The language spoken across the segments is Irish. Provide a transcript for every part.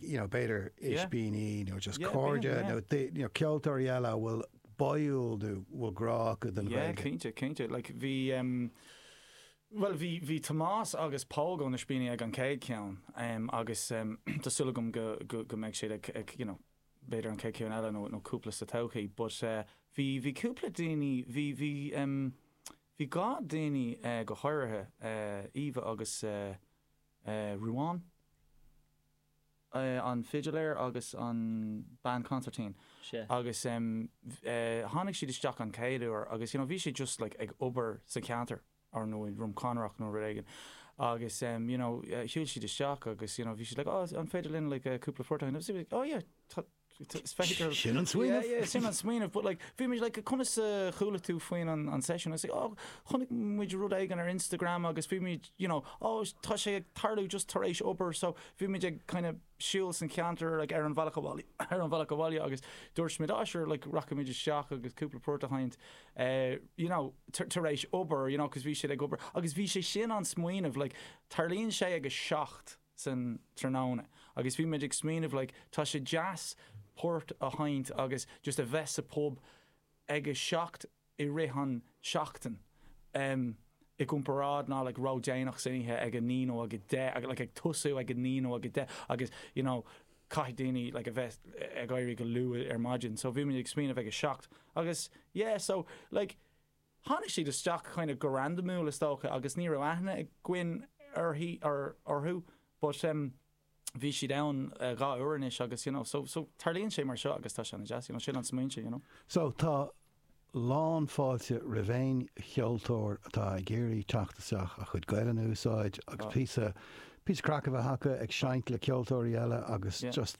you know, b'fhéidir ispíní nó just cairde nó you know, ceoltóirí eile a bhfuil báúil nó a bhfuil grá acu don Ghaeilge. Yeah, cinnte, cinnte. Like, bhí, um, bhuel, bhí, bhí Tomás agus Póg ó na hIspíní ag an chéad cheann, um, agus, um, tá súil agam go, go, go mbeidh siad ag, ag, you know, b'fhéidir an chéad cheann eile nó, nó cúpla sa todhchaí. But, eh, bhí, bhí cúpla daoine, bhí, bhí, um, bhí dhá daoine, eh, go háirithe, eh, Eva agus, eh, Ruán, an fidléir agus an bean consairtín agus tháinig siad isteach an chéad uair agus you know bhí siad just like ag obair sa ceantar or nó i nDroim Conrach nó rud éigin agus you know shiúil siad isteach agus you know bhí siad like oh an féidir linn like cúpla port oh yeah Sin an smaoineamh. Yeah, yeah, sin an smaoineamh, but like, bhí muid like, conas a chuala tú faoin an seisiún? I was like, oh, chonaic muid rud éigin ar Instagram agus bhí muid, you know, oh, tá sé ag tarlú just tar éis obair, so bhí muid ag kind of siúl san cheantar like ar an bealach abhaile agus dúirt muid, ah, sure, like rachaidh muid isteach agus cúpla port a sheinnt, eh, you know, tar éis obair, you know, 'cause bhí siad ag obair, agus bhí sé sin an smaoineamh, like, tarlaíonn sé ag a seacht, san tráthnóna agus bhí muid ag smaoineamh like tá sé deas port a sheinnt agus just a bheith sa pub ag a seacht i rith an seachtain em i gcomparáid ná like ródhéanach san oíche ag a naoi nó ag a deich like ag tosú ag a naoi nó ag a deich agus you know caithfidh daoine like a bheith ag éirí go luath ar maidin so bhí muid ag smaoineamh ag a seacht agus yeah so like Tháinig siad isteach kind of go randamúil is dócha agus ní raibh aithne againn uirthi, or orthu but em bhí siad ann dhá uair anois agus you know so, so tarlaíonn sé mar seo agus tá sé ana-dheas, you know sin an smaointe you know. So tá lán fáilte roimh aon cheoltóir atá ag iarraidh teacht isteach a chuid Gaelainne a úsáid agus píosa, píosa craic a bheith acu ag seinnt le ceoltóirí eile agus just,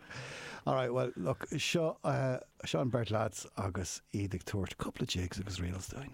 All right, bhuel, look, seo, seo an beirt lads agus iad ag tabhairt cúpla jigs agus reels dúinn.